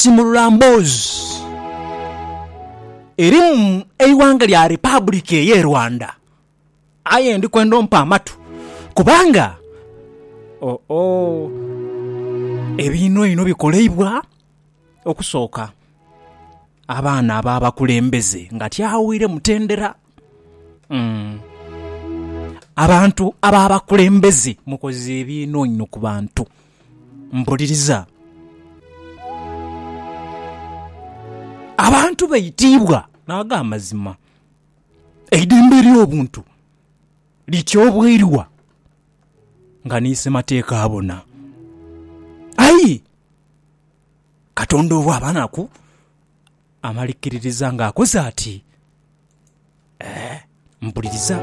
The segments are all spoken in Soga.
Kimulula mboozi eri mu eighanga lya Republic eye Rwanda aye ndi kwenda ompe amatu kubanga oh oh ebiino ino bikoleibwa okusooka abaana aba bakulembeze nga tyaawire mutendera umm abantu aba bakulembeze mukoze ebiino ino kubantu. Mpuliriza. Abantu baitiibwa n'ag'amazima. Eidembe ery'obuntu lityoboirwa nga ni Ssemateeka abona. Aye Katonda obwaba naku Amalikiririza ng'akoze ati, Ee, mpuliriza.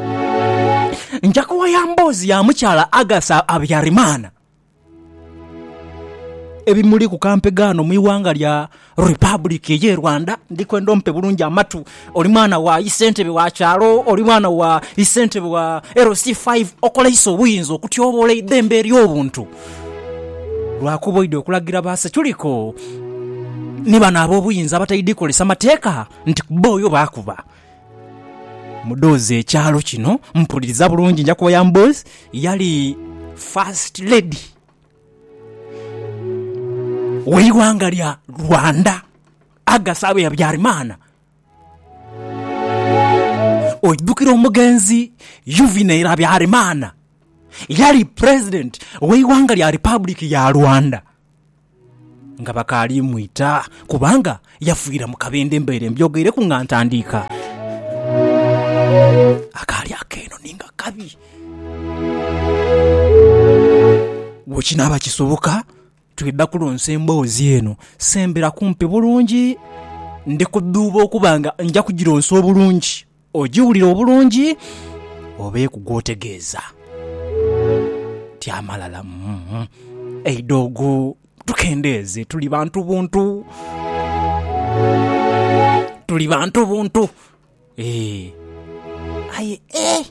Nja kuwaya mboozi ya mukyala August Habyarimana. Ebimuli ku kampega ghano mu ighanga lya Republic eye Rwanda. Ndi kwenda ompe bulungi amatu. Oli mwana wa isentebe wa kyalo, oli mwana wa isentebe wa LC5. Okoleise obuyinza okutyoboola eidhembe ery'obuntu. Lwakuba oidha okulagira ba Securiko ni bano ab'obuyinza abataidhi kozesa mateeka nti kuboyo baakuba mudhozi ekyalo kino. Mpuliriza bulungi nja kuboya mudhozi yali First Lady w'eighanga lya Rwanda, Agasaabe Habyarimana. Oidhukira omugenzi Yuvineri Habyarimana? Yali president ow'eighanga lya Republic ya Rwanda nga bakaali mwita kubanga yafiira mu kabindho embeere mbyogeireku nga ntandiika. Akaali akeeno ni nga kabi. Bwekinaaba kisoboka Twidha kulonsa emboozi eno, sembera kumpi bulungi. Ndi kudhuuba okuba nga nja kugilonsa obulungi, ogiwulire obulungi obeeku gw'otegeeza. Tyamalala, Umm, eidhoogo tukendeeze, tuli bantu buntu. Tuli bantu buntu, eeh, aye eeh!